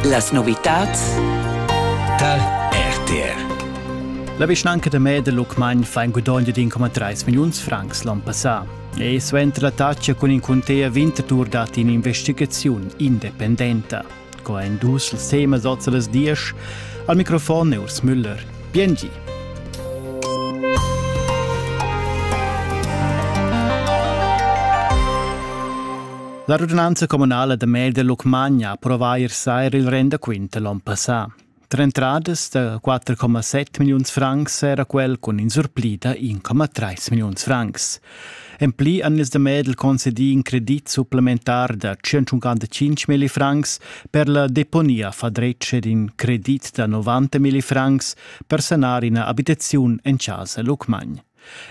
Las novitads tar RTR. La vischnanca da Meda Lucmagn fa in gudogn di 1,3 milliuns francs l'on passà. E suenter la taccia cun in cuntea Winterthur dat in'investigaziun independenta. Co ein dus ils temas oz las diesch? Al microfon è Urs Müller. Biengi. La radunanza communala da Mel de Lucmagna approvà ier sair il rendaquint l'on passà. Tre entradas da 4,7 milliuns francs era quel cun in surpli da 1,3 milliuns francs. En pli han ils de Medel concedì in credit supplementar da 155 milli francs per la deponia fadretg ed in credit da 90 milli francs per sanar ina abitaziun en casa Lucmagn.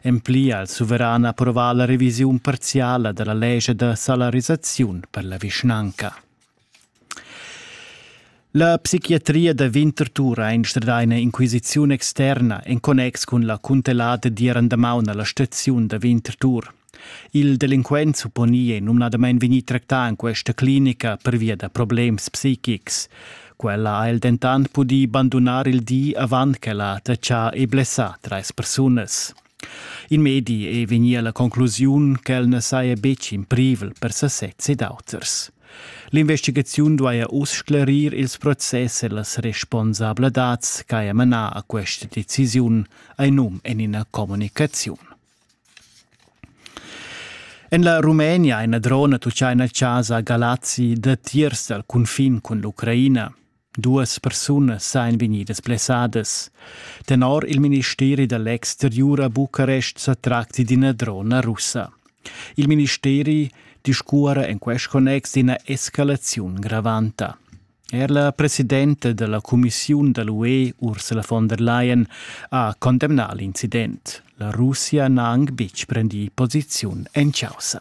En pli ha il suveran approvà la revisiun parziala da la lescha da salarisaziun per la vischnanca. La psichiatria da Winterthur ha instradà ina inquisiziun externa en connex cun la cuntellata d'ir andamaun a la staziun da Winterthur. Il delinquent supponi è numnadamain vegnì tractà en questa clinica pervia da problems psichics. Quella ha el dentant pudì bandunar il di avant ch'ella ha tratschà e blessà trais persunas. In medi è vegnì a la conclusiun ch'el na saja betg in privel per sasez ed auters. L'investigaziun duaja uss sclerir ils process e las responsabladads ch'haja manà a questa decisiun, hai num en ina communicaziun. En la Rumenia ina drona tucciaina a chasa a Galazzi datiers dal cunfin cun l'Ucraina. Duas persunas sain vegnidas blessadas. Tenor il ministeri da l'exteriur a Bucarest sa tracti d'ina drona russa. Il ministeri discuora en quest connex d'ina escalaziun gravanta. Er la presidenta della cumissiun da l'UE Ursula von der Leyen ha condemnà l'incident. La Russia n'ha anc betg prendì posiziun en causa.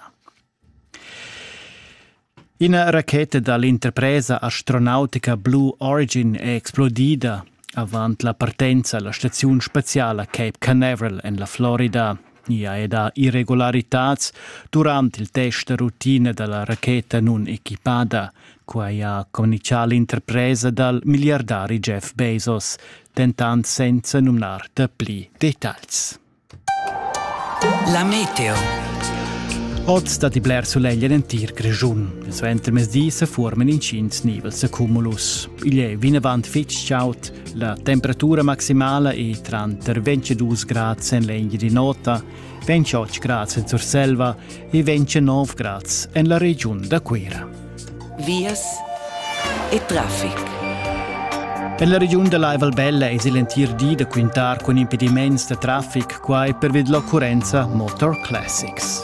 Ina racheta dall'interpresa astronautica Blue Origin è explodida avant la partenza alla staziun spaziala Cape Canaveral en la Florida. Gnia e da irregularitads durant il test da rutina da la racheta nunequipada. Quai ha communichà l'interpresa dal miliardari Jeff Bezos, dentant senza numnar dapli dettagls. La meteo. Oz dat i bler sulegl en entir Grischun. Il suentermezdi se formen intgins nivels de cumulus. Igl è vinavant fitg chaud La temperatura maximala è tranter 22 grads en l'egna di nota, 28 grads en Surselva e 29 grads en la regiun da Cuira. Vias e traffic. En la regiun da Laival Bella es il entir di da quintar cun impediments da traffic quai per vid l'occurrenza Motor Classics.